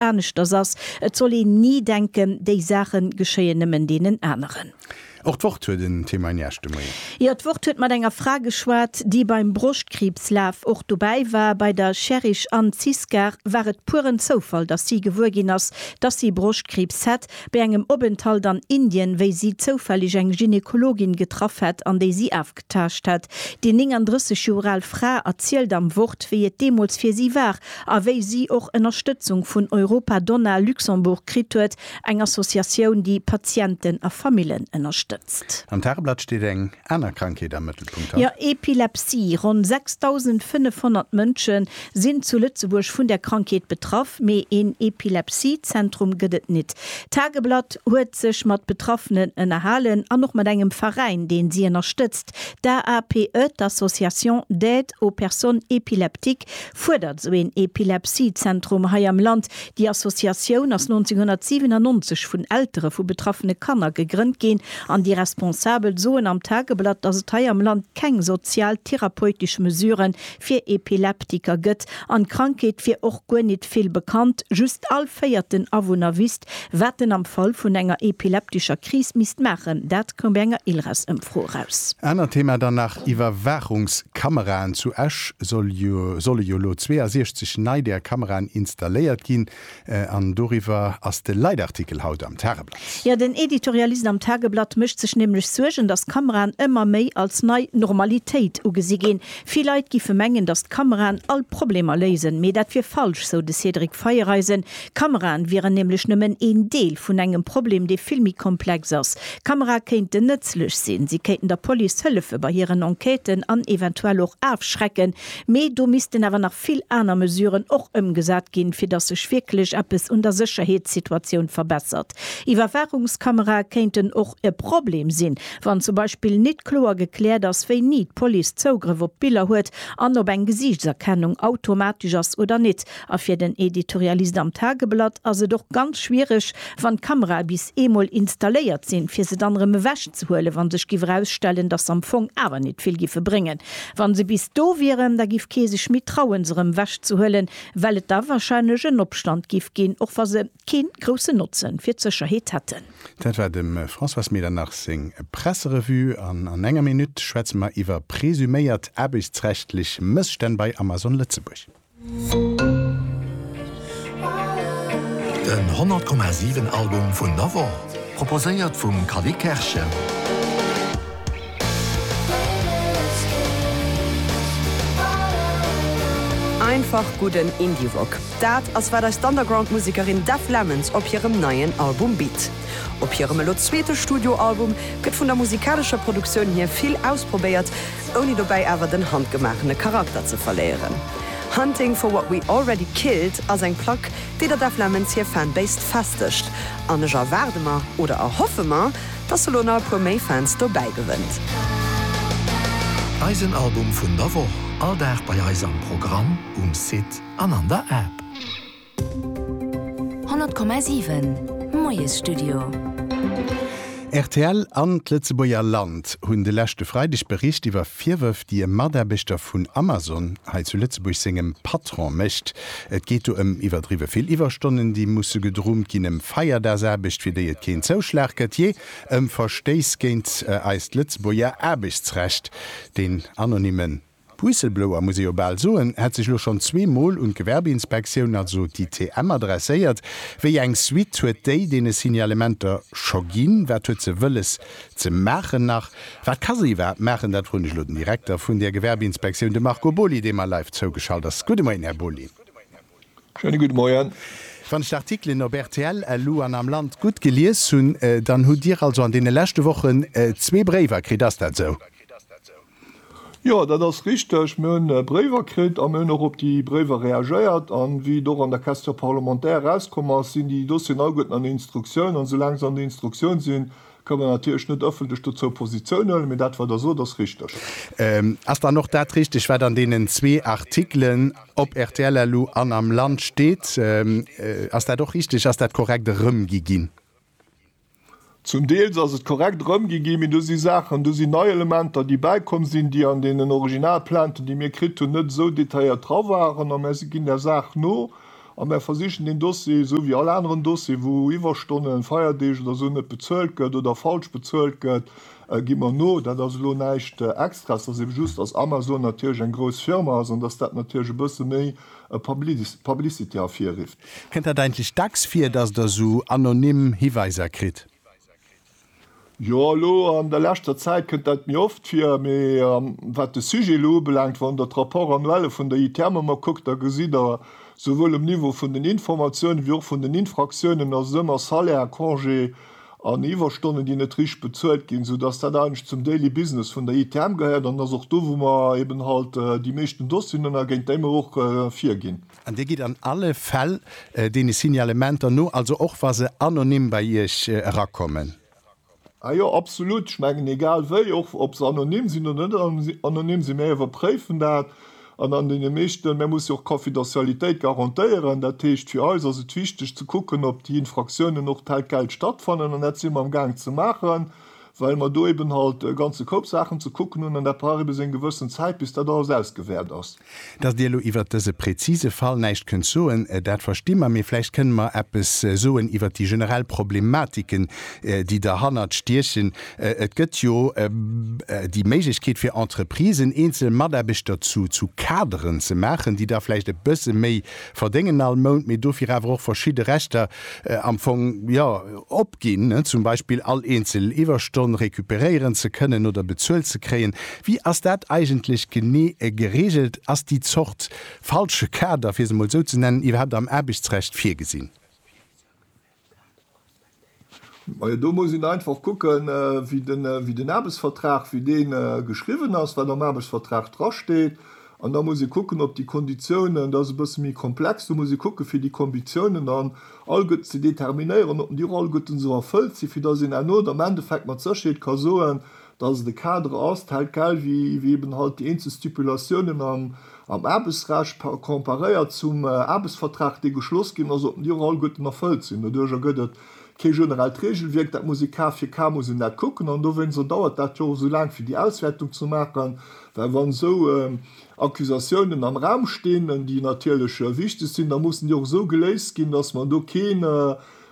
aneschters ass. Et soll een ni denken, déi Saache geschéien nëmmen deenen aneren. Och d'Wort huet en Témoin gnage de Moien. Jo, d'Wort huet mat enger Fra geschwat, déi beim Broschtkriibslaf och dobäi war. Bei der Sherrish Anne Ziskar war et pueren Zoufall, datt si gewuer ginn ass, datt si Broschtkriibs hätt, bei engem Openthalt an Indien, wéi si zoufälleg eng Gynekologin getraff hätt an déi si Gedanktaascht hat. Déi 39 Joer al Fra erzielt am Wort, wéi et deemools fir si war a wéi si och Ënnerstëtzung vun Europa Donna Luxembourg kritt huet, eng Associatioun, déi Patienten a Famillen ënnerstëtzt. Am Tageblatt steet eng aner Krankheet am Mëttelpunkt haut. Jo, Epilepsie. Ronn 6.500 Mënsche Sinn zu Lëtzebuerg vun der Krankheet betraff, mee een Epilepsie-Zentrum gëtt et nit. D'Tageblatt huet sech mat Betraffenen ënnerhalen an och mat engem Veräin, deen si ënnerstëtzt. D'AAPE, d'Association d'aide aux personnes épileptiques, fuerdert esou een Epilepsie-Zentrum hei am Land. Déi Associatioun ass 1997 vun Eltere vu betraffene Kanner gegrënnt ginn an déi Responsabel soen am Tageblatt, dass et hei am Land keng sozial-therapeutesch Mesuren fir Epileptiker gëtt, an d'Krankheet wier och guer nit vill bekannt, just all véierten Awunner wisst, wat en am Fall vun enger epileptischer Kris misst maachen, dat koum bei enger ILRAS-Ëmfro eraus. Anert Thema dann nach, Iwwerwaachungskameraen. Zu Esch solle jo elo 62 nei där Kameraen installéiert ginn. An doriwwer ass de Leitartikel haut am Tageblatt. Jo, den Editorialist am Tageblatt mécht sech nämlech Suergen, datt d'Kameraen ëmmer méi als nei Normalitéit ugesi ginn. Vill Leit giffe mengen, datt d'Kameraen all Problemer léisen. Mee dat wier falsch, sou de Cédric Feiereisen. Kameraen wieren nämlech nëmmen een Deel vun engem Problem, dee vill méi komplex ass. Kamerae kéinten nëtzlech sinn. Si kéinten der Police hëllefe bei hiren Enquêten an eventuell och afschrecken, Mee do missten awer nach vill aner Mesuren och ëmgesat ginn, fir datt sech wierklech eppes un der Sécherheetssituatioun verbessert. Iwwerwaachungskamerae kéinten och e Problem sinn, wann zum Beispill nit kloer gekläert ass, wéini d'Police Zougrëff op d'Biller huet an ob eng Gesiichtserkennung automatesch ass oder nit. A fir den Editorialist am Tageblatt ass et och ganz schwiereg, wann d'Kamerae bis eemol installéiert sinn, fir se dann erëm ewech ze huelen, wa sech giff erausstellen, dass se am Fong awer nit vill giffe bréngen. Wa se bis do wieren, da giff kee sech méi trauen, se erëm ewech ze huelen, well et da wahrscheinlech en Opstand giff ginn, och wa se kee groussen Notze fir d'Sécherheet hätten. Dat war dem Françoise Medernach seng Presserevue. An an enger Minutt schwätze mer iwwer presuméiert aarbechtsrechtlech Mësstänn bei Amazon Lëtzebuerg. Den 100,7 Album vun der Woch, proposéiert vum Cally Kerschen. Einfach gudden Indie-Rock, dat ass wat eis d'Underground-Musekerin Dev Lemons op hirem neien Album bitt. Op hirem elo zweete Studioalbum gëtt vun der musikalescher Produktioun hier vill ausprobéiert, ouni dobäi awer den handgemaachene Charakter ze verléieren. Hunting for What We Already Killed ass eng Plack, déi der Def Lemons hir Fanbase festegt, an ech erwaarde mer, oder erhoffe mer, dass se lo nach e puer méi Fans dobäi gewënnt. Eisen Album vun der Woch, all Dag bei eis am Programm, um Site an an der App. 100,7 Moiesstudio. Rtl an d'Lëtzebuerger Land hunn de leschte Freideg bericht iwwer Virwërf, déi e Mataarbechter vun Amazon hei zu Lëtzebuerg sengem Patron mécht. Et geet do ëm iwwerdriwwe vill Iwwerstonnen, déi musse gedrummt ginn, ëm Feierdags-Aarbecht, fir déi et keen Zouschlag gëtt, jee, ëm Verstéiss géint eist Lëtzebuerger Aarbechtsrecht. Deen anonymen D'Whistleblower, muss ee jo bal soen, hätt sech elo schonn zwee Mol un d'Gewerbeinspektioun, also d'ITM, adresséiert. Wéi eng Suite huet déi deene Signalementer scho ginn? Wat huet se wëlles ze maachen? Nach wat ka se iwwerhaapt maachen? Dat froen ech elo den Direkter vun där Gewerbeinspektioun, de Marco Boly, dee mer live zougeschalt ass. Gudde Moien, Här Boly. Schéine gudde Moien. Wann ech d'Artikelen op rtl, elo an am Land gutt gelies hunn, dann hutt Dir also an deene leschte Wochen zwee Bréiwer kritt, ass dat esou? Jo, dat ass richteg. Mir hunn Bréiwer kritt a mir hunn och op déi Bréiwer reagéiert. A wéi et och an der Question parlementaire erauskomm ass, sinn déi Dossieren agegueden an der Instruktioun. A soulaang se an der Instruktioun sinn, kënne mer natierlech net ëffentlech dozou Positioun huelen. Mee dat, wat Der sot, ass richteg. Ass dann och dat richteg, wat an deenen zwee Artikelen op rtl elo an am Land steet? Ass dat och richteg? Ass dat korrekt erëmgi ginn? Zum Deels ass et korrekt erëmgi ginn, mee do si Saachen, do sinn nei Elementer, déi bäikomm sinn, déi an deenen Originalplainten, déi mir kritt hunn, net esou detailléiert dra waren. A mir ginn där Saach no a mir versichen deen Dossier, esou wéi all aneren Dossier, wou Iwwerstonnen, Feierdeeg oder esou net bezuelt gëtt oder falsch bezuelt gëtt, gi mer no. Dat ass elo näischt Extraes. Et ass ebe just, dass Amazon natierlech eng grouss Firma ass an dass dat natierlech e bësse méi e Publicity ervirrifft. Kënnt dat eigentlech dacks vir, dass Der esou anonym Hiweiser kritt? Jo, elo an der leschter Zäit kënnt dat méi oft vir. Mee wat de Sujet elo ubelaangt, wann Der d'Rapports annuelle vun der ITM ëmmer kuckt, da gesitt Der, souwuel um Niveau vun den Informatiounen wéi och vun den Infractiounen, dass et ëmmer Salaire, Congé, an Iwwerstonnen, déi net richteg bezuelt ginn, sou dass dat eigentlech zum Daily Business vun der ITM gehéiert an dass och do, wou mer eben halt déi meeschten Dossieren hunn a géint déi mer och virginn. An Dir gitt an alle Fäll deene Signalementer no, also och wa se anonym bei Iech erakommen? Ah jo, absolut. Ech mengen, egal wéi, och ob se anonym sinn oder net anonym sinn, mir iwwerpréifen dat. An an deene meeschte, mä muss jo och d'Confidentialitéit garantéieren. Dat heescht, fir eis ass et wichteg ze kucken, ob déi Infraktiounen och telquel stattfannen. An dat si mer am Gaang ze maachen, well mer do eben halt e ganze Koup Saachen ze kucken hunn an dat brauch eben seng gewëssen Zäit, bis dat alles ausgewäert ass. Dass Dir elo iwwert dëse prezise Fall näischt kënnt soen, dat versti mer. Mee vläicht kënnt mer eppes soen iwwert déi generell Problematiken, déi derhannert stiechen. Et gëtt jo déi Méiglechkeet fir Entreprisen, eenzel Mataarbechter zu Kaderen ze maachen, déi da vläicht e bësse méi verdéngen all Mount, mee dofir awer och verschidde Rechter am Fong, jo, opginn, zum Beispill all eenzel Iwwerstonn recuperéieren ze kënnen oder bezuelt ze kréien. Wéi ass dat eigentlech genee gereegelt? Ass déi Zort falsche Kader, fir se emol esou ze nennen, iwwerhaapt am Aarbechtsrecht virgesinn? Majo, do muss een einfach kucken, wéi den Aarbechtsvertrag, wéi dee geschriwwen ass, wat am Aarbechtsvertrag drasteet. An da muss ee kucken, ob déi Konditiounen, dat ass e bësse méi komplex, do muss ee kucken, fir déi Konditiounen dann all gutt ze determinéieren, ob déi och alleguerten esou erfëllt sinn, fir datt een herno am Endeffekt mat Sécherheet ka soen, dass et e Kader ass, tel quel, wéi eben halt déi eenzel Stipulatiounen am Aarbechtsrecht comparéiert zum Aarbechtsvertrag, dee geschloss ginn ass, sollten déi och alleguerten erfëllt sinn. Doduerjer gëtt et kee generellt Regelwierk, dat muss ee ka fir ka muss een dat kucken an dowéinster dauert dat jo och esou laang, fir déi Auswäertung ze maachen, well wann esou Accusatiounen am Raum stinn, déi natierlech wichteg sinn, da mussen déi och esou geléist ginn, dass mer do keen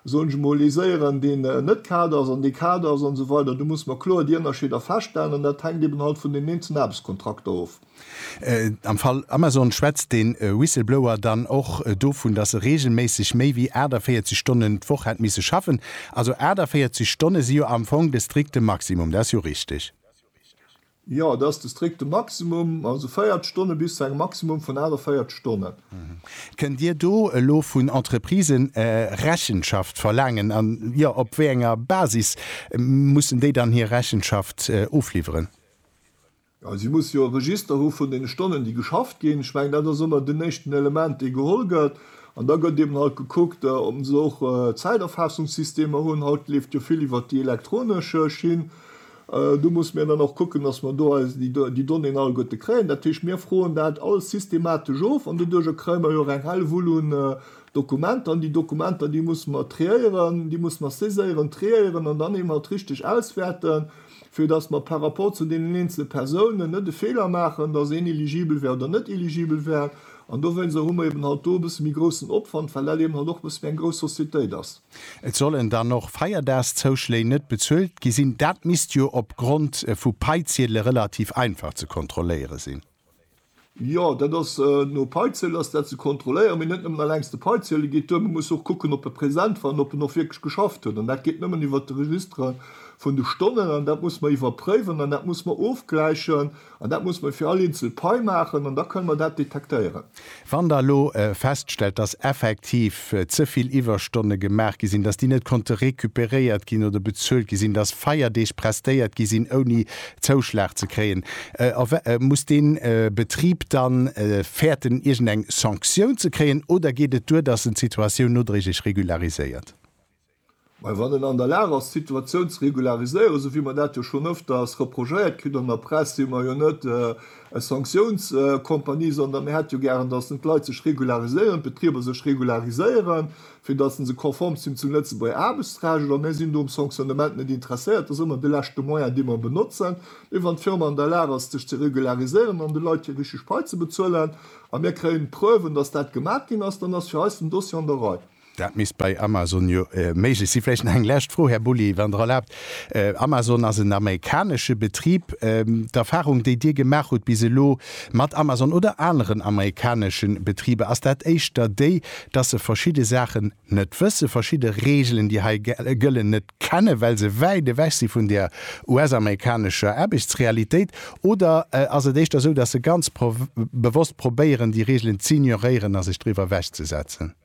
soen ech emol, ee séier an deen net kal ass an dee kal ass an esou weider, do musse mer kloer déi Ënnerscheeder feststellen an dat hänkt eben halt vun den eenzelen Aarbechtskontrakter of. Am Fall Amazon schwätzt de Whistleblower dann och dovun, dass se reegelméisseg méi wéi 48 Stonnen d'Woch hätt misse schaffen. Also 48 Stonne si jo am Fong de strikte Maximum, dat ass jo richteg? Jo, et ass de strikte Maximum, also 40 Stonne bis zu engem Maximum vun 48 Stonnen. Kënnt Dir do elo vun Entreprisen Rechenschaft verlaangen an, jo, op wéi enger Basis mussen déi dann hir Rechenschaft ofliwweren? Jo, si musse jo e Register hu vun deene Stonnen, déi geschafft ginn. Ech mengen, dat ass ëmmer den éischten Element, dee geholl gëtt. An da gëtt eben halt gekuckt, ob se och Zäiterfassungssystemer hunn. Haut leeft jo vill iwwert déi elektronesch Schinn. Do musse mir dann och kucken, dass mer do eis déi Donnéeën alleguerte kréien. Dat heescht, mir froen dat alles systematesch of an doduerjer kréie mer jo och eng Hellwull un Dokumenter. An déi Dokumenter, déi musse mer triéieren, déi musse mer saiséieren, triéieren an dann eben alt richtig auswäerten, fir dass mer par rapport zu deenen eenzele Persounen net e Feeler maachen, dass een eligibel wär oder net eligibel wär. An dowéinst hu mer eben halt do e bësse méi groussen Opwand, well dat eben halt och e bësse méi eng grouss Societéit ass. Et sollen dann och Feierdaagszouschléi net bezuelt gi sinn. Dat misst jo op Grond vu Paiziedele relativ einfach ze kontrolléiere sinn. Jo, dat ass, no Paiziedel ass dat ze kontrolléieren, mee net nëmmen alleng de Paiziedel geet duer. Mir musse och kucken, ob e present war an ob en och wierklech geschafft huet. An dat geet nëmmen iwwert de Registre vun de Stonnen. An dat muss mer iwwerpréiwen an dat muss mer ofgläichen. An dat muss mer fir all eenzel Pai maachen an da kënne mer dat detektéieren. Wann Der elo feststellt, dass effektiv ze vill Iwwerstonne gemaach gi sinn, dass déi net konnte récupéréiert ginn oder bezuelt gi sinn, dass Feierdeeg prestéiert gi sinn ouni Zouschlag ze kréien, muss dee Betrib da fäerten, iergendeng Sanktioun ze kréien oder geet et duer, dass en d'Situatioun nodréiglech regulariséiert? Mä wann en an der Lag ass, d'Situatioun ze regulariséieren, esou wéi mer dat jo schonn öfters reprochéiert kritt an der Press, si mer jo net eng Sanktiounscompagnie, sondern mir hätte jo gären, dass en d'Leit sech regulariséieren, d'Betrieber sech regulariséieren, fir dass se se konform zinn zum Lëtzebuerger Aarbechtsrecht. Oder mir sinn do um Sanctionnement net interesséiert. Dat ass ëmmer de leschte Moyen, dee mer benotzen. Mee wann d'Firma an der Lag ass, sech ze regulariséieren an de Leit hir richteg Pai ze bezuelen a mir kréien d'Preuven, dass dat gemat ginn ass, dann ass fir eis den Dossier an der Rei. Dat misst bei Amazon jo méiglech sinn. Vläicht nach eng lescht Fro, Här Boullier, wann Der erlaabt. Amazon ass en amerikanesche Betrib. D'Erfahrung, déi Dir gemaach hutt bis elo mat Amazon oder aneren amerikanesche Betriber, ass dat éischter déi, dass se verschidde Saachen net wëssen, verschidde Regeln, déi hei gëllen, net kennen, well se wäit ewech si vun der US-amerikanescher Aarbechtsrealitéit? Oder ass et éischter esou, dass se ganz bewosst probéieren, déi Regeln z'ignoréieren a sech driwwer ewechzesetzen?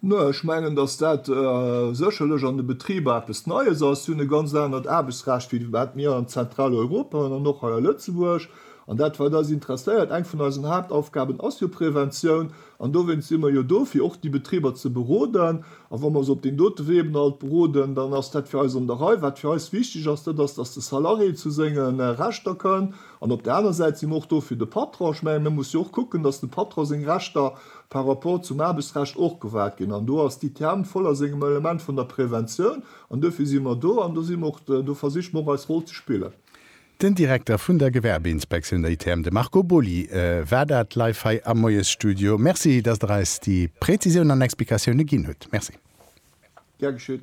Nö, ech mengen, dass dat sécherlech an de Betriber eppes Neies ass. Si hunn e ganz anert Aarbechtsrecht, wéi wat mir an Zentraleuropa hunn an och hei a Lëtzebuerg. An dat, wat eis interesséiert, eng vun eisen Haaptaufgaben ass jo Präventioun. An dowéinst si mer jo do, fir och déi Betriber ze beroden. A wa mer se op deem dote Wee eben alt beroden, dann ass dat fir eis an der Rei. Wat fir eis wichteg ass, dat ass, dass de Salarié zu senge Rechter kënn, An op der aner Säit si mer och do fir de Patron. Ech mengen, e muss jo och kucken, datt dem Patron seng Rechter par rapport zum Aarbechtsrecht och gewahrt ginn. An do ass d'ITM voll a sengem Element vun der Preventioun. An duerfir si mer do an do si mer och, do versiche mer och eis Roll ze spillen. Den Direkter vun der Gewerbeinspektioun, der ITM, de Marco Boly war dat live hei am Moiesstudio. Merci, datt Der eis déi Präzisiounen an Explikatioune ginn hutt. Merci. Gär geschéet.